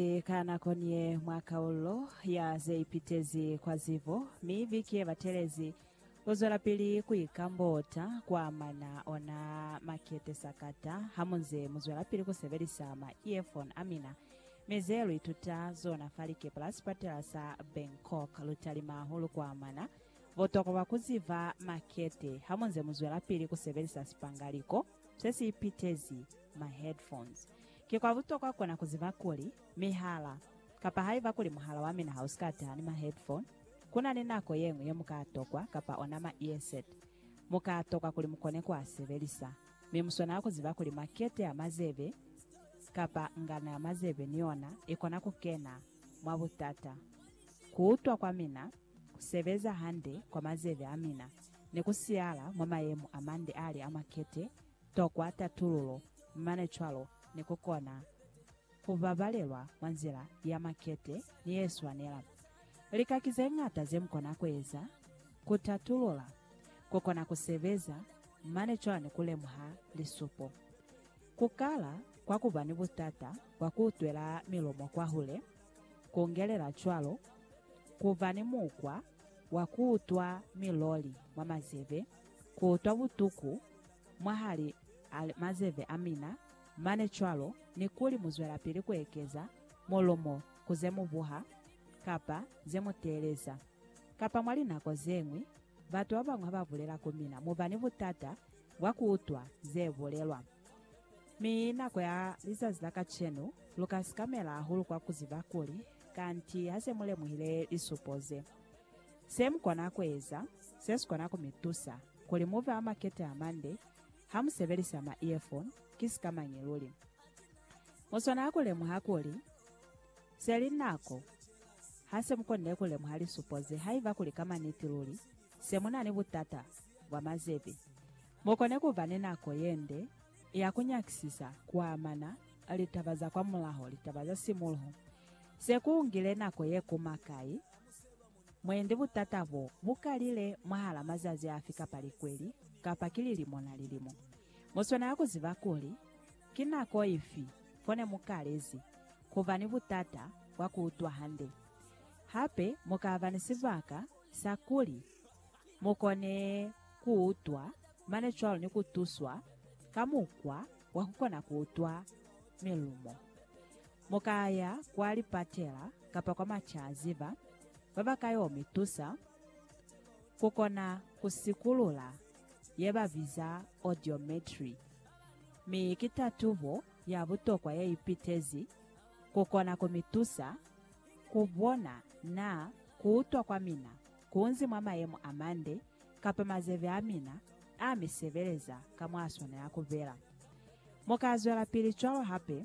Mwakalezi ka nako niye mwa kaullo ya zeipitezi kwa zibo, mi biki yebatelezi kuzwelapili kuikambota kuamana ona makete sakata hamunze muzwelapili kusebelisa ma earphone amina. Mi ze luituta zona fa likepe la sipatela sa Bangkok lutalima hahulu kuamana butokwa bwa kuziba makete hamunze muzwelapili kusebelisa sipangaliko sesiipitezi ma headphones. Ki kwa butokwa kona ku ziba kuli, mi hala, kapa haiba kuli muhala wa mina ha u si ka taha ni ma headphone, ku na ni nako ye ñwi ye mu ka tokwa, kapa ona ma earset, mu ka tokwa kuli mu kone ku a sebelisa. Mi mu swanela ku ziba kuli makete ya mazebe, kapa ngano ya mazebe ni yona, i kona ku kena mwa butata. Ku utwa kwa mina, ku sebeza hande kwa mazebe a mina, ne ku siyala mwa mayemo a mande a li a makete, Tokwa tatululo, mane cwalo ni ku kona ku babalelwa mwa nzila ya makete ni ye swanela. Lika ki ze ñata ze mu kona ku eza ku tatulula, ku kona ku sebeza, mane cwalo ni ku lemuha lisupo. Ku kala kwa ku ba ni butata bwa ku utwela milomo kwahule, ku ngelela cwalo ku ba ni mukwa wa ku utwa miloli mwa mazebe, ku utwa butuku mwahali a mazeve a mina, mane cwalo ni kuli mu zwelapili ku ekeza molomo ku ze mu buha kapa ze mu teeleza. Kapa mwa linako ze ñwi, batu ba bañwi ha ba bulela ku mina, mu ba ni butata bwa ku utwa ze bulelwa. Mi nako ya lizazi la kacenu, lu ka sikamela hahulu kwa ku ziba kuli, Kanti ha se mu lemuhile lisupo ze, se mu kona ku eza se si kona ku mi tusa. kuli muve a makete a mande ha mu sebelisa ma earphone ki sika mañi luli. Mu swanela ku lemuha kuli, se li nako ha se mu konile ku lemuha lisupo ze haiba kuli ka maniti luli se mu na ni butata bwa mazebi. Mu kone ku ba ni nako ye nde ya ku nyakisisa ku amana litaba za kwamulaho, litaba za simuluho, se ku ngile nako ye kuma kai. Mwendi butata bo bu kalile mwahala mazazi afi kapa likweli, kapa ki lilimo na lilimo. Mu swanela ku ziba kuli ki nako ifi fone mu kalezi ku ba ni butata bwa ku utwa hande. Hape mu ka ba ni sibaka sa kuli mu kone ku utwa mane cwalo ni ku tuswa ka mukwa wa ku kona ku utwa milumo. Mu ka ya kwa lipatela kapa kwa macaziba ba ba ka yo mi tusa ku kona ku sikulula ye ba biza audiometry, mi ki tatubo ya butokwa ye ipitezi ku kona ku mi tusa ku bona na ku utwa kwa mina ku nzi mwa mayemo a mande kapa mazebe a mina a mi sebeleza ka mwa a swanela ku bela. Mu ka zwelapili cwalo hape.